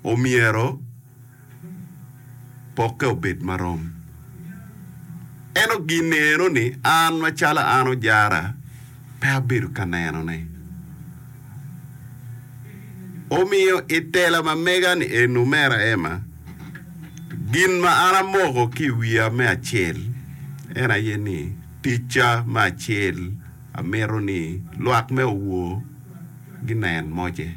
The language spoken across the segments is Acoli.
omyero pokke obed marom. Eno gin eno ni an macalo an ojara pe abedo ka nenone. Omiyo i tela ma mega ni eni omera Emma, gin ma an amoko ki i wiya me acel en aye ni ticca me acel amito ni lwak me owor ginen moce.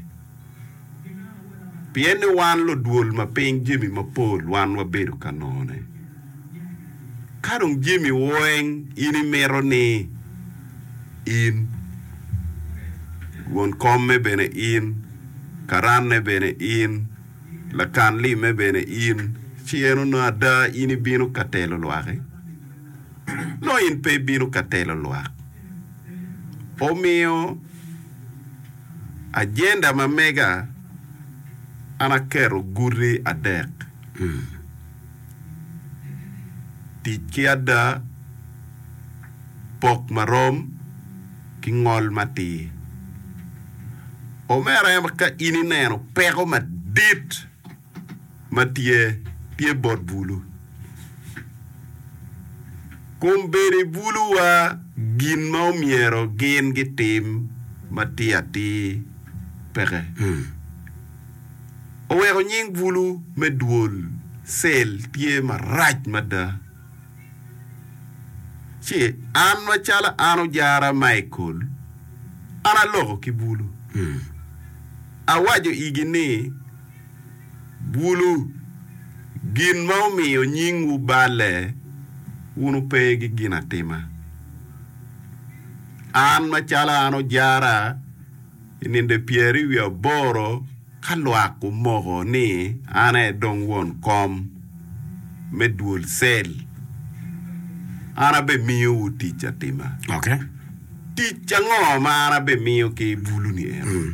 Pien ni wan ludwol ma piny jami mapol wan wabedo ka none. Ka dong jami weng in imito ni in, won komme bene in, karanne bene in, lakan limme bene in, ci en onongo ada in ibino ka telo lwaki? Nongo in pe ibino ka telo lwak. Omiyo. Ajenda ma mega, an aketo guti adek, tic ki ada, pok marom, ki ngol matir. Omera ka in ineno peko madit, ma tye, tye bot bulu. Kom bedo i buluwa gin ma omyero gin gitim matir atir peke. Oweko nying bulu me dwol cell tye marac mada. Ci an macalo an ojara Michael, an aloko ki bulu. Awaco igi ni, Bulu gin ma omiyo nyingwu balle, wun wupe ki ginatima. An macalo an ojara i ninde pyeri wiye aboro ka lwak gumoko ni an aye dong won kom me dwol cell, an abimiyowu tic atima. Tic ango ma an abimiyo ki bulu-ni eno?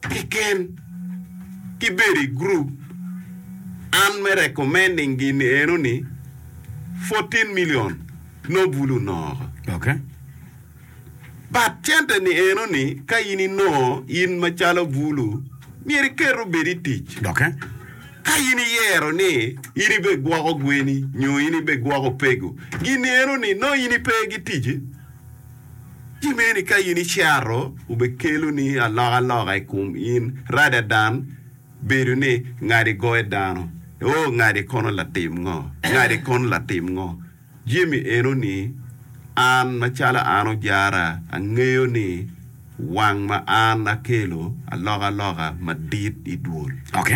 keken ki bedo i group an me recommending gin eno ni fourteen million nongo bulu noko Okay. but cente ni eno ni ka in inongo in macalo bulu myero iket obed i tic Okay. ka in iyero ni in ibe gwoko gweni nyo in ibe gwoko pegu gin ni eno ni nongo in ipe gi tic Ki meni ka in icero, obekeloni alokaloka i kom in, rada dan bedo ni ngadi goyo dano. Oh, ngadi kono latim ngo? Ngadi kono latim ngo? Jemi enoni, An, macalo an ojara, angeyo ni wang ma an akelo alokaloka madit i dwol. Ok.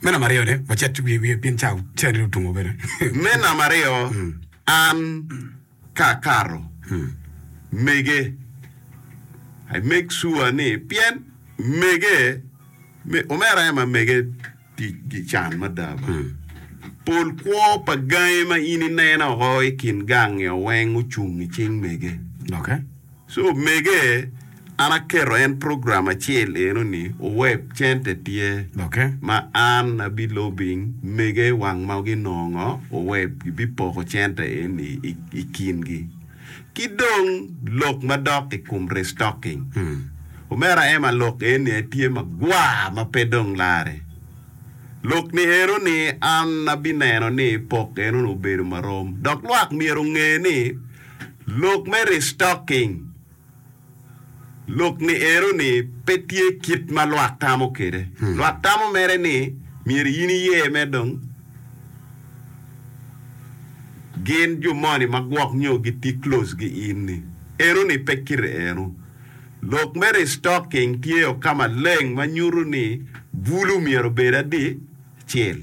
Me namba aryo ne, wacit wiye wiye pien ca, ca nene otungo bene. Me namba aryo, an. Ka akato, mege. I make sure ni pien mege me, omera aye ma mege tic gi can mada ba. Pol kwo pa gangi ma in ineno o i kin gang nio weng ocung i cing mege. Okay. So omege, an aketo en program acel eno ni oweb center tye Okay. ma an abi lobing mege wang ma ginongo oweb gibi poko center eni i, i kingi. Ki dong lok madok i kom restocking. Omera Emma lok eni aye tye magwar ma pe dong lare. Lok ni eno ni an abi neno ni pok eno ni obedo marom. Dok lwak myero onge ni Lok me restocking, Lok ni eno ni pe tye kit ma lwak tamo kwede. Lwak tamo mere ni myero in iye me dong gin jo moni ma gwok nyo giti close gi in ni. Eno ni pe kite eno. Lok me restocking tye o ka maleng ma nyuto ni bulu myero obed adi? Acel.